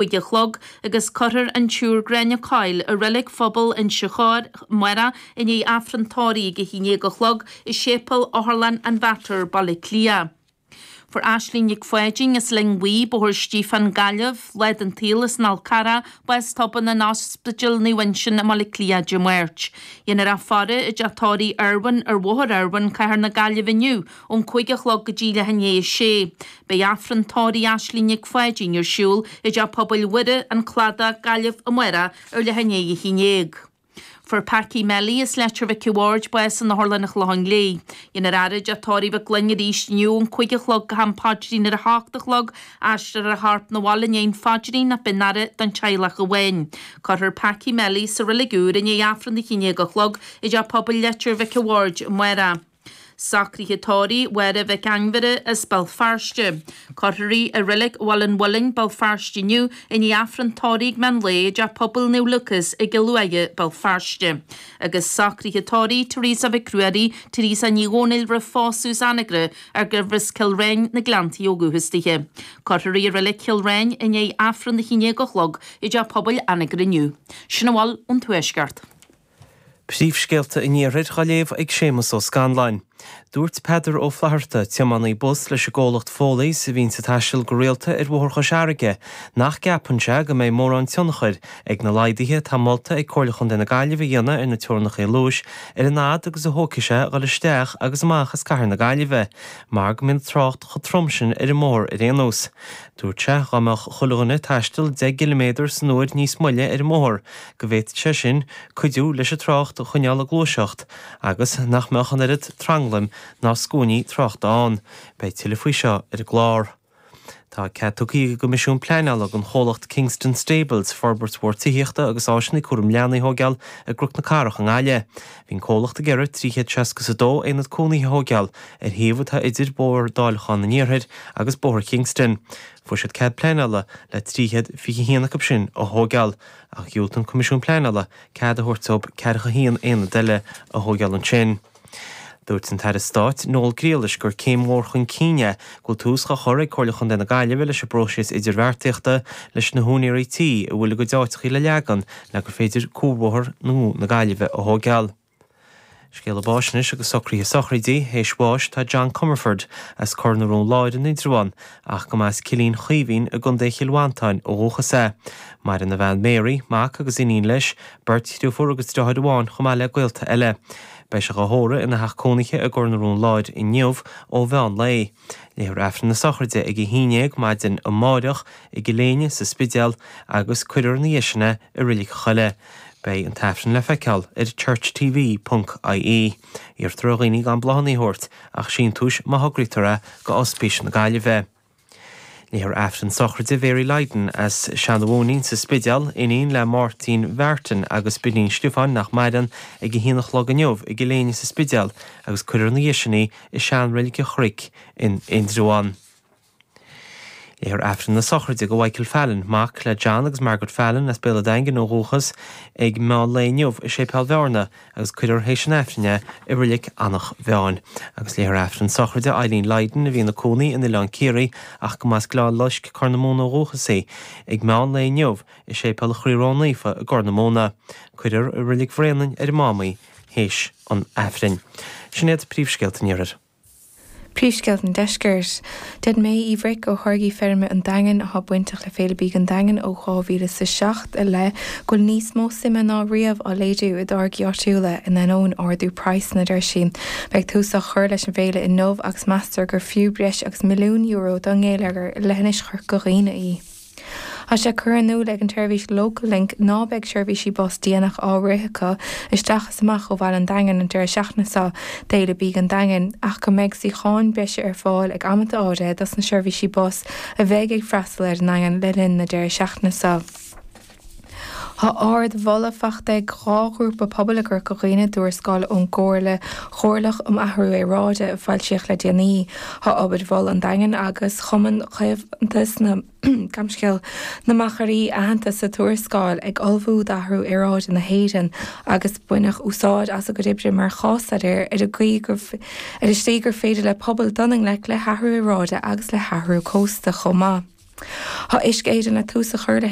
bhuille a chlog agus cuirfear an tSiúr Gráinne Coyle i Reilig Phobal Inse Chór, amárach, i ndiaidh Aifreann Tórraimh ag a haon dhéag a chlog i Séipeal Otharlann an Mhater, Baile Átha Cliath. Fuair Aisling Nic Pháidín as Linn Bhuí, Bóthar Stiofáin, Gaillimh, lá den tsaol as an Fhál Carrach bás tobann in Ospidéal Naomh Uinseann i mBaile Cliath Dé Máirt. Dhéanfar a faire i dTeach Tórraimh Irwin ar Bhóthar Irwin, Cathair na Gaillimhe inniu, Ón cúig a chlog go dtí leath i ndiaidh a sé, beidh Aifreann Tórraimh Aisling Nic Pháidín ar siúl i dTeach Pobail Mhuire, An Cladach, Gaillimh, Amárach ar leath i ndiaidh a haon dhéag. Fuair Packy Melly as Leitir Mhic a' Bhaird bás in Otharlann an Chlocháin Léith. Dhéanfar a fhaire i dTeach Tórraimh Mhic Fhloinn arís inniu ón cúig a chlog go ham paidrín ar a hocht a chlog, aistreofar a chorp na bhaile i ndiaidh an phaidrín ach beidh an fhaire don teaghlach amháin. Cuirfear Packy Melly sa Reilig Úr i ndiaidh Aifreann a haon dhéag a chlog i dTeach Pobail Leitir Mhic a' Bhaird, Amárach. Socruithe Tórraimh Mháire Mhic Ainmhire as Béal Feirste. Cuirfear í i Reilig Bhaile an Mhuilinn, Béal Feirste inniu, i ndiaidh Aifreann Tórraimh meán lae i dTeach Pobail Naomh Lúcás i gCill Uaighe, Béal Feirste. Agus Socruithe Tórraimh Teresa Mhic Ruairí, Teresa Ní Dhomhnaill roimh phósadh as Anagaire ach gurbh as Cill Ráin, Na Gleanntaí ó dhúchas daoithe. Cuirfear í i Reilig Chill Ráin i ndiaidh Aifreann a hAon a Chlog i dTeach Pobail Anagaire inniu. Sin a bhfuil ón Tuaisceart. Príomhscéalta an Iarthair dhá léamh ag Séamus Ó Scanláin. Dúirt Peadar Ó Flatharta, tiománaí bus leis an gcomhlacht Foley's a bhíonns ag taisteal go rialta ar Bhóthar Chois Fharraige, nach gceapann sé go mbeidh mórán tionchair ag na laghduithe atá molta ag Comhairle Chontae na Gaillimhe a dhéanamh ar na teorainneachaí luais ar an fhad agus a thógfaidh sé a dhul isteach agus amach as cathair na Gaillimhe mar go mbíonn trácht chomh trom sin ar an mbóthar ar aon nós. Dúirt sé dá mbeadh chuile dhuine ag taisteal 10 gciliméadar san uair níos moille ar an mbóthar, go bhféadfadh sé sin cuidiú leis an trácht a choinneáil ag gluaiseacht agus nach mbeadh an oiread tranglaim ná scuainí tráchta ann. Beidh tuilleadh faoi seo ar an gclár. Tá cead tugtha ag an gCoimisiún Pleanála don chomhlacht Kingston Stables forbairt mhór tithíochta agus áiseanna cúraim leanaí a thógáil i gCnoc na Cathrach i nGaillimh. Bhí an comhlacht ag iarraidh 362 aonad cónaithe a thógáil ar shuíomh atá idir Bóthar Dáileacháin an Iarthair agus Bóthar Kingston. Fuair siad cead pleanála le 321 acu sin a thógáil. ach dhiúltaigh an Coimisiún Pleanála cead a thabhairt dóibh 41 aonad eile a thógáil ansin. Dúirt an tAire Stáit, Noel Grealish, gur céim mhór chun cinn é go bhfuil tús dhá chur ag Comhairle Chontae na Gaillimhe leis an bpróiseas idirbheartaíochta leis na húinéirí tí a bhfuil a gcuid áiteacha le leagan le gur féidir Cuarbhóthar nua na Gaillimhe a thógáil. Scéala Báis Anois agus Socruithe Sochraidí, Théis bháis tá John Comerford as Cor na Rón Láir in Indreabhán ach go mba as Cillín Chaoimhín i gContae Chill Mhantáin ó dhúchas é. Maireann a bhean Mary, mac agus iníon leis, beirt dhriofúr agus driotháir amháin chomh maith le gaolta eile. Beidh sé dhá thórramh ina theach cónaithe i gCor na Rón Láir inniu ó mheán lae. Léifear Aifreann na Sochraide ag a haon déag maidin amárach i gCill Éinne sa Spidéal agus cuirfear ina dhiaidh sin é i Reilig an Choilligh. Beidh an tAifreann le feiceáil ar churchtv.ie. Iarrtar ar dhaoine gan bláthanna a thabhairt ach síntiúis má thograítear é go Ospís na Gaillimhe. Léifear Aifreann Sochraide Mhary Lydon as Seanadh Mhóinín sa Spidéal, iníon le Máirtín Mhartin agus Bidín Stiofáin, nach maireann, ag a haon a chlog inniu i gCill Éinne sa Spidéal agus cuirfear ina dhiaidh sin í i seanreilig an Chnoic in Indreabhán. Léifear Aifreann na sochraide do Mhichael Fallon, mac le John agus Margaret Fallon as Béal a' Daingin ó dhúchas, ag meán lae inniu i Séipéal Bhearna agus cuirfear théis an Aifrinn é i Reilig Eanach Mheáin. Agus léifear Aifreann sochraide Eileen Lydon, a bhí ina cónaí in Oileán Ciarraí ach go mba as Gleann Loisc, Corr na Móna ó dhúchas í, ag meán lae inniu i Séipéal Chroí Ró Naofa i gCorr na Móna. Cuirfear i Reilig Bhraonáin ar an Mám í. théis an Aifrinn. Sin iad príomhscéalta an Iarthair. Príomhscéalta an Deiscirt. Deir May Uí Bhric, ó tháirgí feirme an Daingin atá bainteach le Féile Bídh an Daingin ó 2007 i leith, go bhfuil níos mó suime ná riamh á léiriú i dtáirgí áitiúla in ainneoin ardú praghsanna, deir sí. Beidh tús á chur leis an bhféile inniu agus meastar gur fiú breis agus milliún euro don ngeilleagar i leithinis Chorca Dhuibhne í. Tá sé curtha in iúl ag an tseirbhís Local Link ná beidh seirbhísí bus déanach á rith acu isteach is amach ó Bhaile an Daingin an deireadh seachtaine seo d'Fhéile Bídh an Daingin ach go mbeidh suíocháin breise ar fáil ag amanta áirithe dos na seirbhísí bus a bheidh ag freastal ar an nDaingean le linn na deireadh seachtaine seo. Tá ard-mholadh faighte ag dhá ghrúpa pobail i gCorca Dhuibhne i dtuarascáil ón gComhairle Chomhairleach um Athrú Aeráide a foilsíodh le déanaí. Tá obair Mhol an Daingin agus Chumann Caomhantais na gCamscéal, na Machairí aitheanta sa tuarascáil ag ullmhú d'athrú aeráide na hÉireann agus baineadh úsáid as a gcuid oibre mar chás-staidéar ar an tslí gur féidir le pobail dul i ngleic le hathrú aeráide agus le hathrú cósta chomh maith. Tá Uisce Éireann le tús a chur le